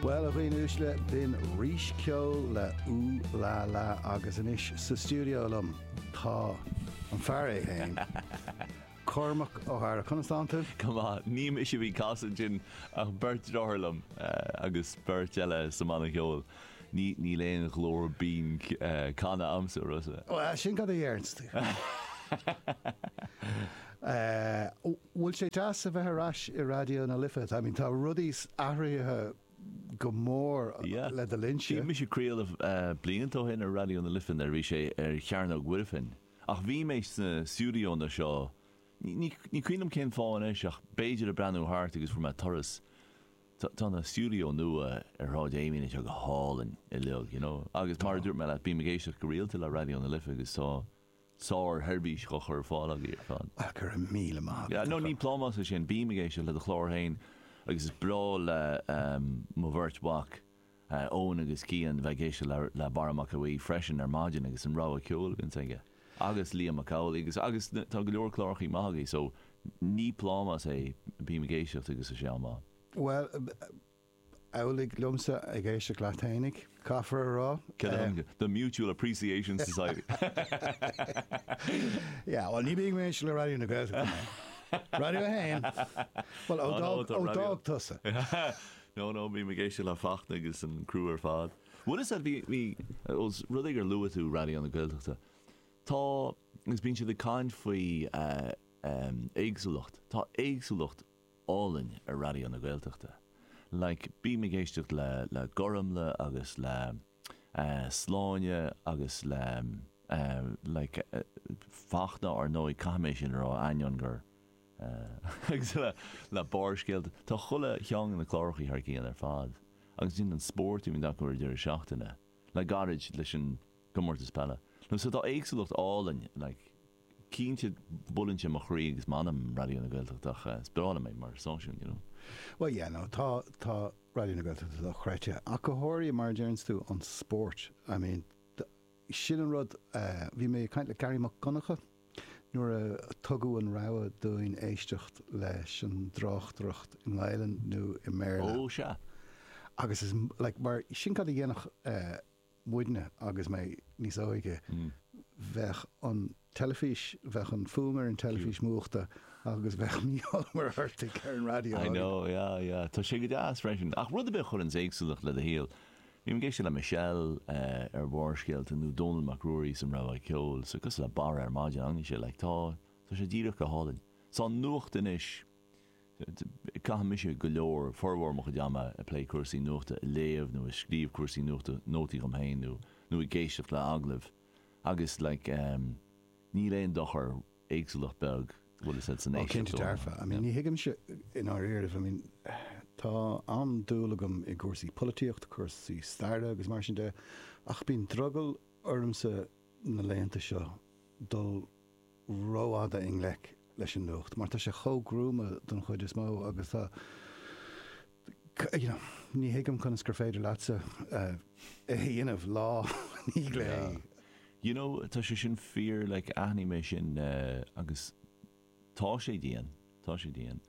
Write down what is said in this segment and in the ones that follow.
Bhuel, a dhaoine uaisle, b'in píosa ceoil le Ooh La La agus anois sa stiúideo liom tá an fear é féin, Cormac Ó hEadhra. Conas tá tú? Go maith. Ní mise a bhí ag casadh ansin ach beirt dearthár liom agus beirt eile sa mbanna ceoil. Níl aon ghlór binn canadh agamsa, a Rossa. Bhuel, sin cad a dhéarfainnse. An bhfuil sé deas a bheith ar ais i Raidió na Life? I mean tá rudaí athraithe go mór Yeah. ó do linnse. Bhí mise ag craoladh blianta ó shin ar Raidió na Life nuair a bhí sé ar Chearnóg Mhuirfean ach bhí mé sna stiúideóanna seo, ní cuimhin liom cén fáth anois ach b'fhéidir ag breathnú thart agus fuair mé turas. Tá na stiúideó nua ar Shráid Amiens anois go hálainn uilig, you know, agus mar a dúirt mé leat, bím ag éisteacht go rialta le Raidió na Life agus tá, sár sheirbhís á chur ar fáil agaibh ann. Go raibh míle maith agat, a chara. Ní plámás é sin, bím ag éisteacht le do chlár féin agus is breá le mo bheirt mhac, Eoin agus Cian, bheith ag éisteacht le Barra Mac Aodha freisin ar maidin agus an rogha ceoil a bhíonns aige agus Liam Mac Amhlaigh agus agus tá go leor clárachaí maith agaibh so ní plámás é bím ag éisteacht agus is é atá go maith. Bhuel, amhlaidh liomsa ag éisteacht leat fhéinig, caithfear a rá. The Mutual Appreciation Society? Yeah, bhuel, ní bhíonn mé ag éisteacht le Raidió na Gaeltachta mé. Raidió a hAon? Bhuel, ó d'fhág tusa. No, no, bím ag éisteacht le Fachtna agus an criú ar fad. Bhuel, is ea, bhí, bhí, os rud é gur luaigh tú Raidió na Gaeltachta, tá, agus bíonn siad ag caint faoi éagsúlacht, tá éagsúlacht, álainn ar Raidió na Gaeltachta. Like bím ag éisteacht le le Gormlaith agus le eh Sláine agus le eh like Fachtna ar ndóigh caithfidh mé sin a rá ainneoin gur eh agus le le Barrscéalta tá chuile cheann de na clárachaí thar cionn ar fad agus ansin an spórt a bhíonn acu ar an deireadh seachtaine le gairid leis an Comórtas Peile. So tá éagsúlacht álainn, like, cinnte, buaileann sé mo chroí agus m'anam, Raidió na Gaeltachta ach eh, spioráileann sé mé mar stáisiún, you know. Bhuel, yeah, no, tá, tá Raidió na Gaeltachta dochreidte ach go háirithe mar a deireanns tú, an spórt. I mean, sin an rud eh, bhí mé ag caint le Gearaí Mac Donncha nuair a tugadh an rogha dúinn éisteacht leis an dtráchtaireacht i nGaelainn nó i mBéarla. Oh, sea. Agus is, like, mar sin cad a dhéanadh eh, muidne agus mé níos óige bheadh an teilifís, bheadh an fuaim ar an teilifís múchta agus bheadh Mícheál Ó Muircheartaigh ar an raidió I know, againn. yeah, yeah. Tá sé go deas freisin. Ach rud ar bith a chuireanns éagsúlacht le do shaol. Bím ag éisteacht le Michelle eh ar Bharrscéalta nó Dónall Mac Ruairí 's an rogha ceoil so cosúil le Barra ar maidin, an fhaigheann sé like tá, tá sé díreach go hálainn. So an nuacht anois. Caithimse go leor, formhór mo chuid ama ag plé cúrsaí nuachta, ag léamh nó ag scríobh cúrsaí nuachta, nótaí dhom féin nó nó ag éisteacht le agallaimh agus like em níl aon dochar, éagsúlacht beag, bhfuil fhios a'd Oh cinnte éisteacht ó dearfa, I mean ní yeah. thuigimse i ndáiríre, I mean tá an-dúil agam i gcúrsaí polaitíocht, cúrsaí staire agus mar sin de ach bíonn drogall ormsa na laethanta seo dul rófhada i ngleic leis an nuacht mar tá sé chomh gruama don chuid is mó agus tá you know ní thuigim conas gur féidir leatsa é a dhéanamh lá i ndiaidh lae you know tá sé sin fíor like aithním é sin agus tá sé dian tá sé dian.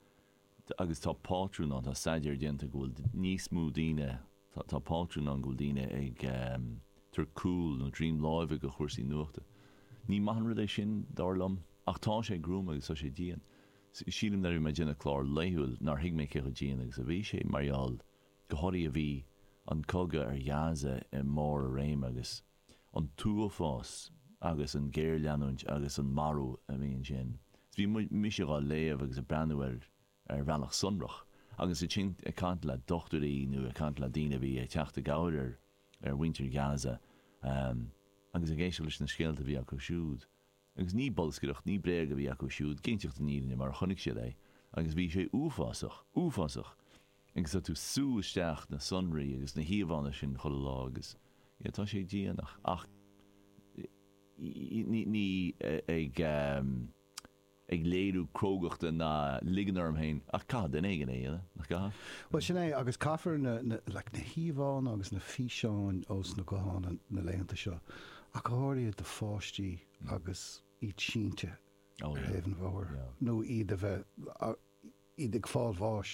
agus tá pátrún ann, tá staidéar déanta go bhfuil níos mó daoine, tá, tá pátrún ann go bhfuil daoine ag tabhairt cúil nó droim láimhe go chúrsaí nuachta. Ní maith an rud é sin, dar liom, ach tá sé gruama agus tá sé dian. Sílim nuair a bhí mé ag déanamh clár laethúil nár thuig mé cé chomh dian agus a bhí sé mar gheall go háirithe bhí an cogadh ar Ghaza i mbarr a réime agus, an t-uafás agus an ghéarleanúint agus an marú a bhí ansin. Is bhí mise dhá léamh agus a' breathnú air ar bhealach sonrach agus ansin ag caint le dochtúirí nó ag caint le daoine a bhí ag teacht i gcabhair ar mhuintir Ghaza agus ag éisteacht leis na scéalta a bhí acu siúd. Agus ní bolscaireacht, ní bréag a bhí acu siúd, cinnteacht an fhírinne mar a chonaic siad é. Agus bhí sé uafásach, uafásach. Agus tá tú ag sú isteach na sonraí agus na híomhánna sin chuile lá agus yeah tá sé dian ach ní, ní, ag, ag léiriú crógachta ná ag ligean orm féin ach caithfidh duine éigin é a dhéanamh, nach gcaithfidh? Bhuel sin é agus caithfear na, na, like, na híomhánna agus na físeáin ós na gutháin na laethanta seo Ach go háirithe do pháistí agus iad sínte ar thaobh an bhóthair nó iad a bheith, iad ag fáil bháis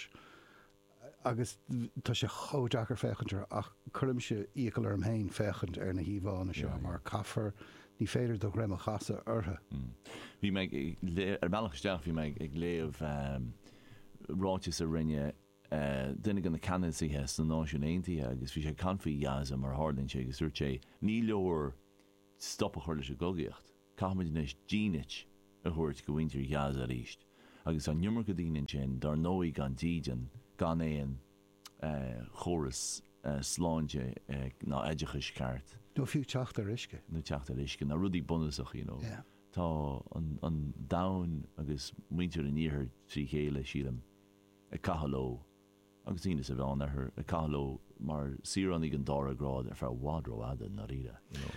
agus tá sé chomh deacair féachaint orthu ach cuirimse iachall orm féin féachaint ar na híomhánna seo mar caithfear, ní féidir do dhroim a chasadh orthu. Bhí mé ag, ar an mbealach isteach bhí mé ag léamh ráiteas a rinne, duine de na ceannasaithe sna Náisiúin Aontaithe agus bhí sé ag caint faoi Ghaza mar a tharlaíonn sé agus dúirt sé, ní leor stop a chur leis an gcogaíocht, caithfimid anois dínit a thabhairt go mhuintir Ghaza arís. Agus tá an iomarca daoine ansin dár ndóigh gan dídean, gan aon chóras sláinte ná oideachais ceart. Nó fiú teacht ar uisce. Nó teacht ar uisce, na rudaí bunúsacha, you know. Tá an domhan agus muintir an iarthair trí chéile, sílim. ag caitheamh leo agus daoine sa Mheánoirthear ag caitheamh leo mar saoránaigh den dara grád ar feadh i bhfad rófhada i ndáiríre, you know.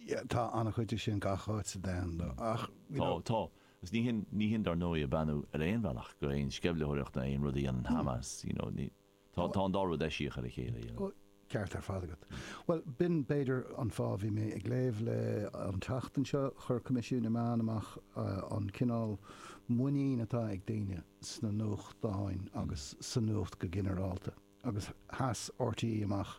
Yeah, tá an-chuid de sin gach áit sa domhan though ach, you know. Tá, tá. Agus ní shin, ní shin dar ndóigh ag beannú ar aon bhealach go aon sceimhlitheoireacht nó aon rud a dhéanann Hamas, you know, ní, tá, tá an dá rud eisiach ar a chéile, you know. Ceart ar fad agat. Bhuel, b'in b'fhéidir an fáth, bhí mé ag léamh le an tseachtain seo, chuir Coimisiún na Meán amach an cineál muinín atá ag daoine sna nuachtáin agus sa nuacht go ginearálta agus sheas RTÉ amach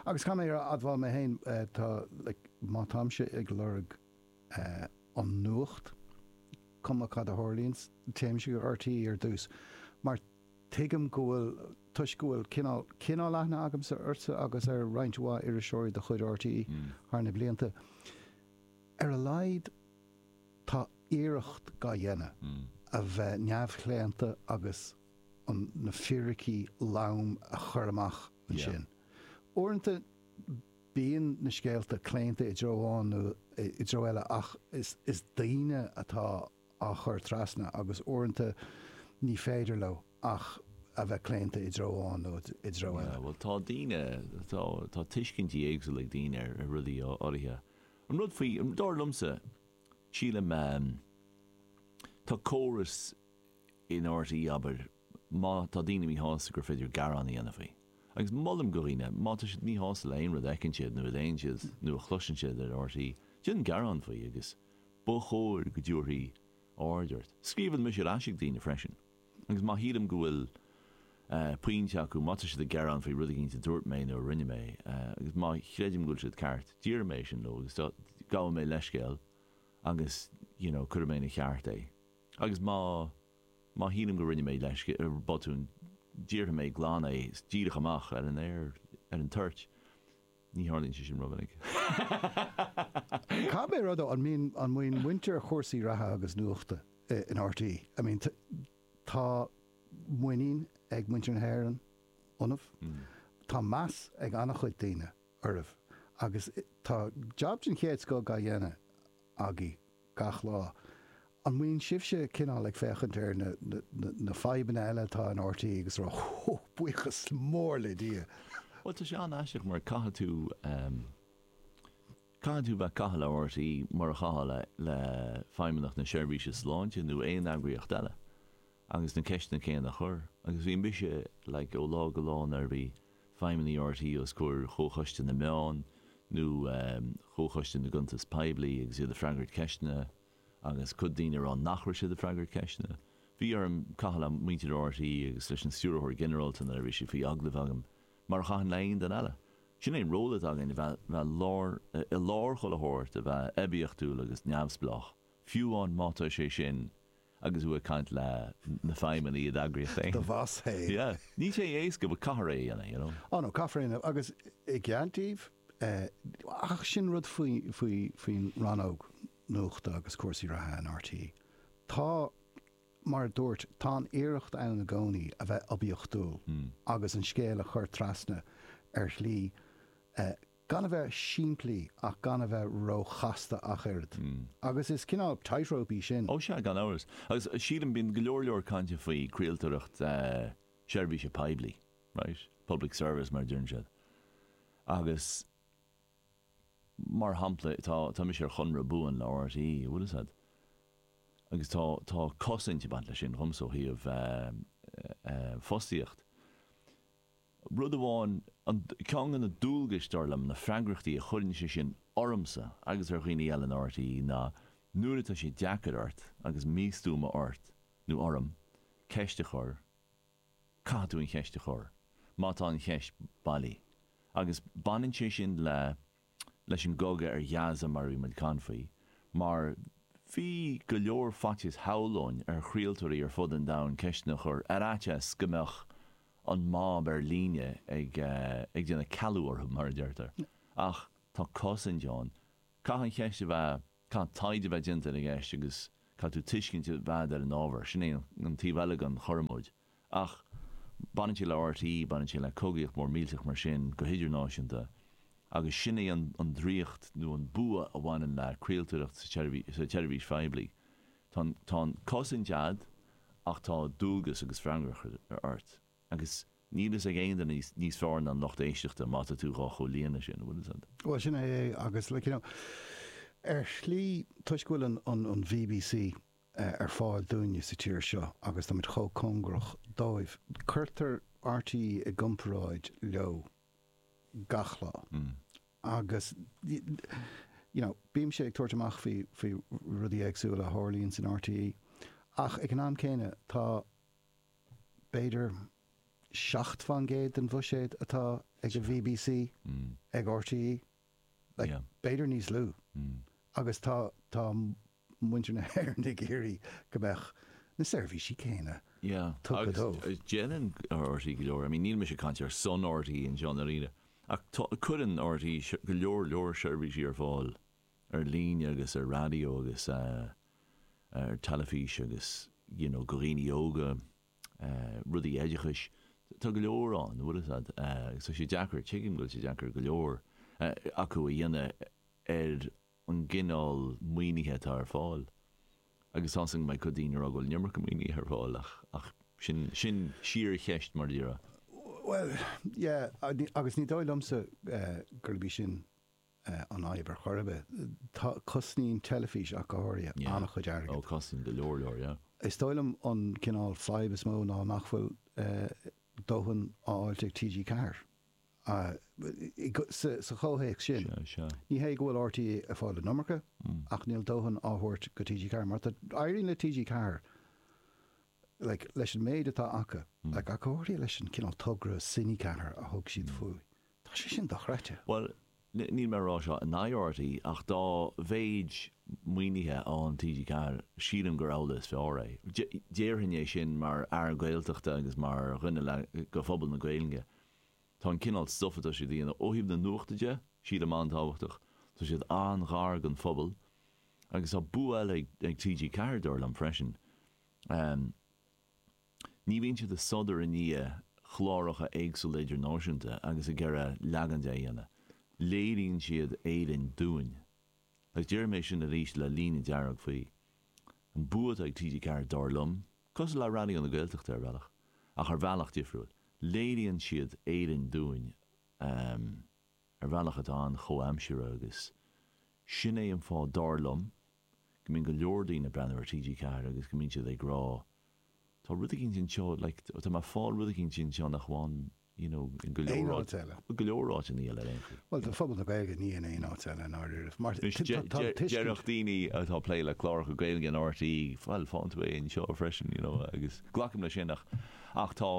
agus caithfidh mé a admháil mé féin tá like má táimse ag lorg an nuacht cuma cad a tharlaíonns téimse go RTÉ ar dtús mar Tuigim go bhfuil, toisc go bhfuil cineál, cineál aithne agamsa ortsa agus ar roinnt mhaith iriseoirí de chuid RTÉ thar na blianta. Ar a laghad tá iarracht dhá dhéanamh a bheith neamhchlaonta agus an, na fíricí loma a chur amach ansin. Uaireanta bíonn na scéalta claonta i dtreo amháin nó i dtreo eile ach is, is daoine atá. á chur trasna agus uaireanta ní féidir leo ach a bheith claonta i dtreo amháin nó i dtreo Yeah, eile. bhuel tá daoine, tá, tá tuiscintí éagsúla ag daoine ar rudaí áirithe. An rud faoi, dar liomsa, sílim ehm, tá córas in RTÉ, abair, má tá daoine míshásta gur féidir gearán a dhéanamh faoi. Agus molaim do dhaoine, má tá siad míshásta le aon rud a fheiceann siad nó a léann siad nó a chloiseann siad ar RTÉ, déan gearán faoi agus, Ba chóir go dtabharfaí aird ort. Scríobhann mise ar ais ag daoine freisin agus má shílim go bhfuil pointe acu, má tá siad ag gearán faoi rud éigin a dúirt mé nó a rinne mé agus má chreidim go bhfuil siad ceart, déarfaidh mé é sin leo agus gabhfaidh mé leithscéal agus you know cuirfidh mé ina cheart é agus má má shílim go rinne mé botún, déarfaidh mé glan é díreach amach ar an aer ar an toirt. Ní tharlaíonn sé sin rómhinic. Caithfidh mé a rá. An mbíonn muintir chúrsaí reatha agus nuachta in RTÉ, tá muinín ag muintir na hÉireann ionaibh, tá meas ag an-chuid daoine oraibh agus tá jab den chéad scoth á dhéanamh. agaibh gach lá. An mbíonn sibhse cineál ag féachaint ar na, na, na fadhbanna eile atá in RTÉ agus ag rá Hú, buíochas mór le Dia. Bhuel, tá sé an-aisteach mar caithfidh tú, caithfidh tú bheith ag caitheamh le RTÉ mar a chaithfeá le, le Feidhmeannacht na Seirbhíse Sláinte nó aon eagraíocht eile agus na ceisteanna céanna a chur agus bhí mise, like, ó lá go lá nuair a bhí, feidhmeannaigh RTÉ os comhair Chomhchoiste na Meán nó Chomhchoiste na gCuntas Poiblí agus iad ag freagairt ceisteanna agus cuid daoine ag rá nach raibh siad ag freagairt ceisteanna. Bhí orm caitheamh le muintir RTÉ agus leis an Stiúrthóir Ginearálta nuair a bhí siad faoi agallamh agam, mar a chaithfinn le haon duine eile. Sin é an ról atá againn, a bheith i lár chuile shórt, a bheith oibiachtúil agus neamhspleách. Fiú amháin má tá sé sin agus thú ag caint le na feidhmeannaigh i d'eagraíocht féin. Do bhoss féin. Yeah. Níl sé éasca but caithfear é a dhéanamh, you know. Oh no, caithfear é a dhéanamh agus i gcead daoibh, ach sin rud faoin rannóg nuachta agus cúrsaí reatha in RTÉ. Tá, mar a dúirt, tá an iarracht ann i gcónaí a bheith oibiachtúil agus an scéal a chur trasna ar shlí Gan a bheith simplí ach gan a bheith róchasta ach oiread. Agus is cineál tightrope í sin. Ó sea, gan amhras. Agus sílim, bíonn go leor leor cainte faoi chraoltóireacht seirbhíse poiblí, right? Public service mar a deireann siad. Agus mar shampla tá, tá mise ar chonradh buan le RTÉ, an bhfuil 'fhios a'd. Agus tá, tá cosaint ag baint leis sin dhomsa ó thaobh fostaíocht. Rud amháin, an, ceann de na dualgais, dar liom, na freagrachtaí a chuireann sé sin ormsa agus ar dhaoine eile in RTÉ ná nuair atá sé deacair ort agus míchompordach ort nó orm ceist a chur, caithfidh tú an cheist a chur má tá an cheist bailí agus baineann sé sin le leis an gcogadh ar Ghaza mar a bhí muid ag caint faoi mar bhí go leor faitíos shamhlóinn, ar chraoltóirí ar fud an domhain ceisteanna a chur ar fhaitíos go mbeadh an mob ar líne ag ag déanamh cealú orthu mar a deirtear ach tá cosaint againn caithfidh an cheist a bheith caithfidh taighde a bheith déanta ar an gceist agus caithfidh tú tuiscint a bheith a'd ar an ábhar sin é an taobh eile den chormóid. ach baineann sé le RTÉ, baineann sé le cogaíocht mhór millteach mar sin go hidirnáisiúnta agus sin é an draíocht nó an bua a bhaineann le craoltóireacht sa tseirbhís phoiblí. Tá an cosaint a'd ach tá dualgas agus freagracht ort agus níl a fhios ag aon duine níos fearr ná an lucht éisteachta má tá tú dhá chomhlíonadh sin, an bhfuil fhios a'd? Bhuel sin é agus like you know ar shlí toisc go bhfuil an an an bbc ar fáil dúinne sa tír seo agus táimid chomh cóngarach dóibh. Cuirtear RTÉ i gcomparáid leo gach lá agus you know bímse ag tabhairt amach faoi faoi rudaí éagsúla a tharlaíonn in RTÉ ach ag an am céanna tá b'fhéidir seacht faoin gcéad den bhuiséad atá ag an bbc ag RTÉ like b'fhéidir níos lú agus tá tá muintir na hÉireann ag iarraidh go mbeadh na seirbhísí céanna Yeah, tugtha agus dóibh. déanann RTÉ go leor, I mean níl mise ag caint ar son RTÉ anseo i ndáiríre ach tá, cuireann RTÉ go leor, leor seirbhísí ar fáil ar líne agus ar raidió agus ar teilifís agus you know go dhaoine óga, rudaí oideachais, tá go leor ann, bhfuil a fhios agat, agus tá sé deacair, tuigim go bhfuil sé deacair go leor acu é a dhéanamh ar. an gcineál maoinithe atá ar fáil agus tá seans go mbeidh cuid daoine ag rá go bhfuil an iomarca maoinithe ar fáil ach ach sin sin síorcheist mar a déarfá. Bhuel yeah agus ní dóigh liomsa gurb í sin an fhadhb ar chor ar bith. Tá cosnaíonn teilifís ach go háirithe yeah an-chuid airgid. Oh cosnaíonn go leor leor yeah. Is dóigh liom an cineál fadhb is mó ná nach bhfuil dóthain á fháil ag TG4 Sa chomhthéacs sin, ní hé go bhfuil RTÉ ag fáil an iomarca ach níl dóthain á thabhairt go TG4 mar éiríonn le TG4 leis an méid atá acu. I gcomhréir leis an gcineál togra Cine4 a thug siad faoi, tá sé sin dochreidte. Bhuel, Níl mé ag rá seo in aghaidh RTÉ ach dá mhéid maoinithe a fhaigheann TG4, sílim gurb amhlaidh is fearr é. Déarfainn é sin mar fhear Gaeltachta agus mar dhuine le go phobal na Gaeilge. Tá an cineál stuif atá siad a dhéanamh, ó thaobh na nuachta de, sílim an-tábhachtach. Tá siad an-ghar don phobal. Agus tá bua eile ag TG4, dar liom, freisin. Ní bhíonn siad ag sodar i ndiaidh chláracha éagsúla idirnáisiúnta agus ag iarraidh leagan de a dhéanamh. Léiríonn siad Éirinn dúinn. Agus déarfaidh mé sin arís le líne dearg faoi. An bua atá ag TG4 dar liom, cosúil le Raidió na Gaeltachta ar bhealach, ach ar bhealach difriúil, léiríonn siad Éirinn dúinn ar bhealach atá an-chomhaimseartha agus sin é an fáth dar liom go mbíonn go leor daoine ag breathnú ar TG4 agus go mbíonn siad ag rá tá rud éigin anseo like tá mé ag fáil rud éigin anseo nach bhfaighim you know in go leor áit eile. Bhuel go leor áit eile ar aon chaoi. Bhuel do phobal na Gaeilge ní in aon áit eile in dáiríribh mar tá an tuiscint. Déarfadh daoine atá ag plé le cláracha Gaeilge in RTÉ bhuel faigheann tú é anseo freisin you know agus glacaim leis sin ach ach tá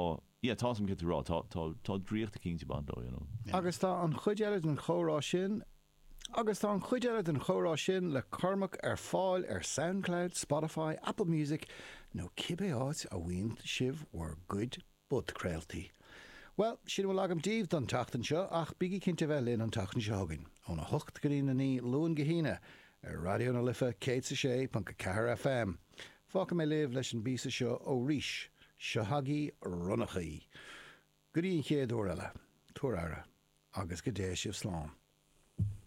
yeah tá sin, céard tú a rá tá tá tá draíocht eicínt ag baint leo you know. Agus tá an chuid eile den chomhrá sin Agus tá an chuid eile den chomhrá sin le Cormac ar fáil ar Soundcloud, Spotify, Apple Music nó cibé áit a bhfaigheann sibh bhur gcuid podchraoltaí. Bhuel, sin a bhfuil agam daoibh don tseachtain seo ach bígí cinnte a bheith linn an tseachtain seo chugainn, óna hocht go dtína naoi Luan go hAoine, ar Raidió na Life 106.4 FM. Fágfaidh mé sibh leis an bpíosa seo ó Rís, Seo chugaibh Ronnachaí. Go dtí an chéad uair eile, tabhair aire agus go dté sibh slán.